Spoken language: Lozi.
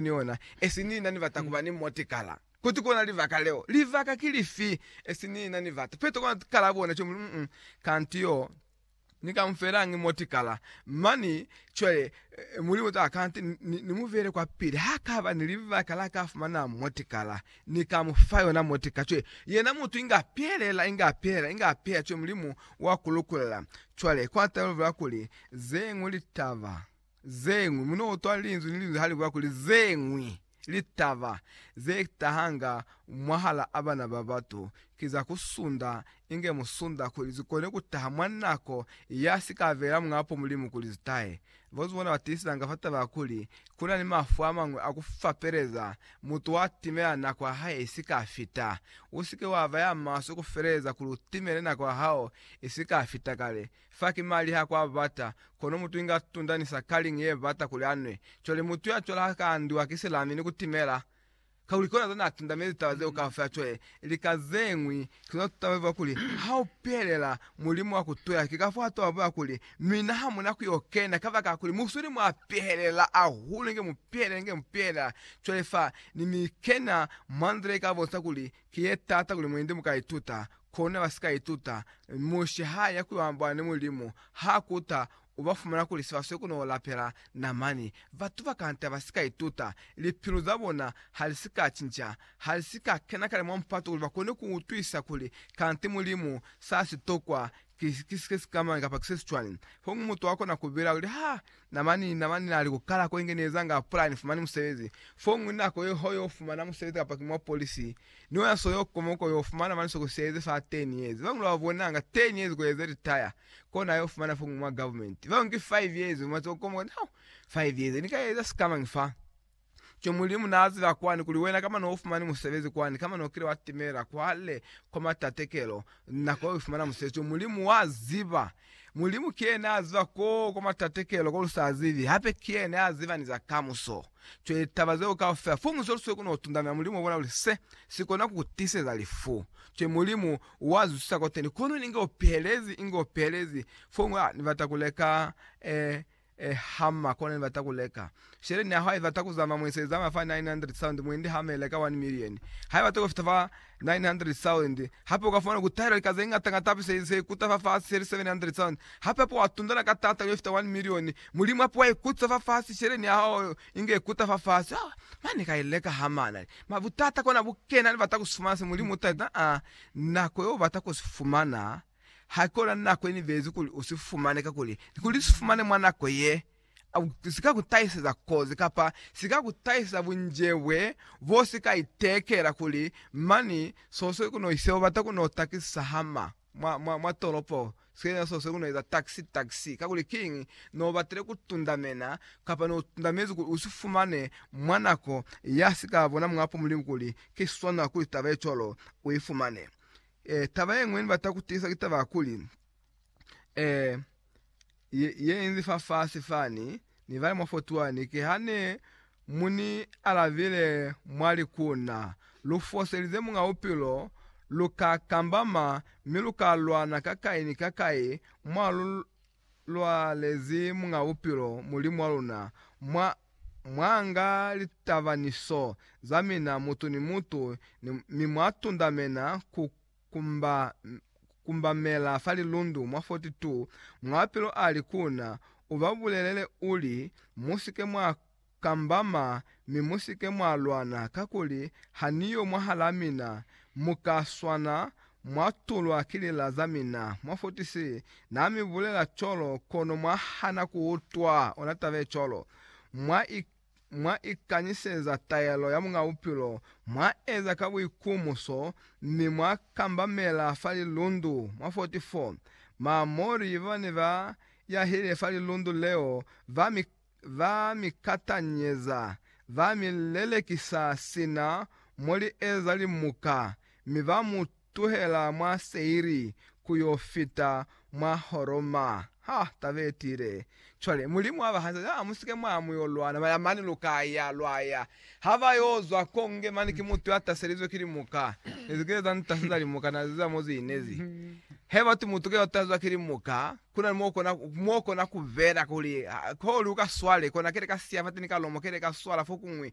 ni ona, esi ni na ni bata kuba ni motikala. Kuti kona libaka leo. Libaka ki lifi? Esi ni na ni bata. Petro kona kala bona cwale, muli, mm, kanti yo ni ka mufelañi motikala? Mani, cwale, Mulimu ta, kanti ni, ni mu beele kwa pili. Ha kaba ni libaka la ka fumana motikala, Ni ka mu fa yona motikala. Cwale, yena mutu inga pelela, inga pelela, inga pelela, cwale Mulimu wa ku lukulela. Cwale, kwa talulela kuli, zeñwi litaba. Zeñwi. Mu no utwa linzwi ni linzwi ha li bula kuli, Zeñwi litaba ze tahanga mwahal'a bana ba batu ki za ku sunda, inge mu sunda kuli zi kone ku taha mwa nako ya si ka bela Muñapo Mulimu kuli zi tahe. Bazuzi bona ba tiisizanga fa taba ya kuli ku na ni mafu a mañwi a ku fapeleza. Mutu wa timela nako ya hae i si ka fita. U si ke wa ba ya maswe ku feleleza kuli u timele nako ya hao i si ka fita kale. Fa ki mali ha kwa bata, kono mutu inga tunda ni sa kali ni ye bata kuli a nwe. Cwale mutu ya cwala ha ka andiwa ki silami ni ku timela, kakuli kona zona a tunda, mi litaba zeo kaufela cwale ili ka ze ñwi. Ki lona tutaba zeba kuli, Ha u pelela Mulimu wa ku tuya, ki ka fo a toba bola kuli, Mina ha mu na ku yo kena, kabakala kuli mu sweli mwa pehelela ahulu, inge mu pehelela, inge mu pehelela. Cwale fa ni mi kena mwa nzila i ka bonisa kuli Ki ye taata kuli mwendi mu ka ituta, kono ne ba si ka ituta. Mushe ha ya ku yo ambola ni Mulimu, ha kuta, u ba fumana kuli se ba sweli ku no lapela namani. Batu ba kanta ba si ka ituta. Lipilu za bona ha li si ka cinca. Ha li si ka kena kale mwa mupato kuli ba kone ku utwisa kuli kanti Mulimu sa si tokwa ki sikamañi kapa ki se si cwani. Fokuñwi mutu wa kona ku bela kuli, Ha Namani, namani na li ku kala ko inge nieza nga pula ni fumani musebezi. Foñwi nako ye ho yo fumana musebezi kapa ki mwa polisi, ni wena so yo koma ko yo fumana mani soko sieze fa 10 years. Bañwi ba bona nga 10 years ko eze retire ko na yo fumana foñwi mwa government. Bañwi ki 5 years, mwa tsoko koma koti, Hau! 5 years, ni ka eza sikamañi fa? Ki Mulimu naaziba kwani kuli wena kamba noufumani musebezi kwani kamba nokile watimela kwale kwa matatekelo nako yoifumana musebezi to Mulimu waziba. Mulimu kiyena aziba ko kwa matatekelo kolusazibi hape kiyena yaziba ni za kamuso. Cwale litaba zeo kaufela fo muzi olusweu kunotundamela Mulimu obona kuli se sikona kukutiseza lifu. Cwale Mulimu wazwisisa koteni kono inge upihelezi inge upihelezi fo mwa nibata kuleka eh e hama kona ni bata ku leka shele ni yaho ha ibata ku zama mwenso ye zama fa 900,000 mwendi hama ye leka 1 million ha ibata ku fita fa 900,000 hape uka fumana ku tahela lika ze ngata ngata hape se se kuta fa fasi shele 700,000 hape hape wa tundana ka tata yo fita 1 million mulimu hape wa ikutisa fa fasi shele ni yaho inge ikuta fa fasi oh mane ka ileka hama na ma butata kona bukena ni bata ku si fumana se mulimu uta ita a nako yo bata ku si fumana. Haikona nako yenibezi kuli usifumane, kakuli kuli usifumane mwa nako ye, sika kutahiseza kozi kapa sika kutahiseza bunjebwe bo sika itekela kuli mani sosweli kuno ise ubata kuno takisisa hama mwa, mwa, mwa tolopo sina sosweli kuno eza taxi, taxi. Kakuli kiñi? No batile kutundamena kapa no tundamezi kuli usifumane mwa nako ya sika bona Muñ'a Mulimu kuli ki swanela kuli taba ye cwalo uifumane. Eh, taba ye nngwe ni bata ku tiisa ki taba ya kuli, eh, ye, ye inzi fa fasi fani, ni bale mwa 41, ki ha ne mu ni alabile mwa li ku na, Lu foselize Muñ'a Bupilo, lu ka kambama, mi lu ka lwana ka kai ni ka kai, mwa lu, Lwa lezi Muñ'a Bupilo, Mulimu wa luna, mwa, mwa nga litaba ni so za mina, mutu ni mutu, ni, mi mwa tundamena ku kumba, ku kumbamela fa lilundu mwa 42, Muñ'a Bupilo ali ku na, U ba bulelele, uli, Musike mwa Kamba ma, mi musike mwa lwana, kakuli ha Ni yo mwahalaa mina, mu ka swana, mwa tulwa ki lila za mina. Mufutisi na mi bulela cwalo, kono mwa hana ku utwa. Ona taba ye cwalo. Mwa i, mwa ikanyiseza taelo ya Muñ'a Bupilo, mwa eza ka buikumuso, mi mwa kambamela fa lilundu. Mwa 44, Maamori ba ne ba yahile fa lilundu leo, ba mi Ba mi katanyeza, ba mi lelekisa sina mo li eza limuka, mi ba mu tuhela mwa Seiri ku yo fita mwa Horoma. Ha ta be tiile. Cwale, Mulimu a ba hanisa, Ha mu si ke mwa ya mu yo lwana, ba ya mane, lu ka ya, lwa ya. Ha ba yo zwa koo, nge mane ki mutu ya taselizwe ki limuka. Ne zi kile za ni taseza limuka, na ziza mo zi inezi. He batu mutu ke yo tasezwa ki limuka. Kuna ni mo kona, mo kona ku bela kuli, ha, kuli uka swale, kona kele ka siya fateni ka lomo, kele ka swala fokuñwi,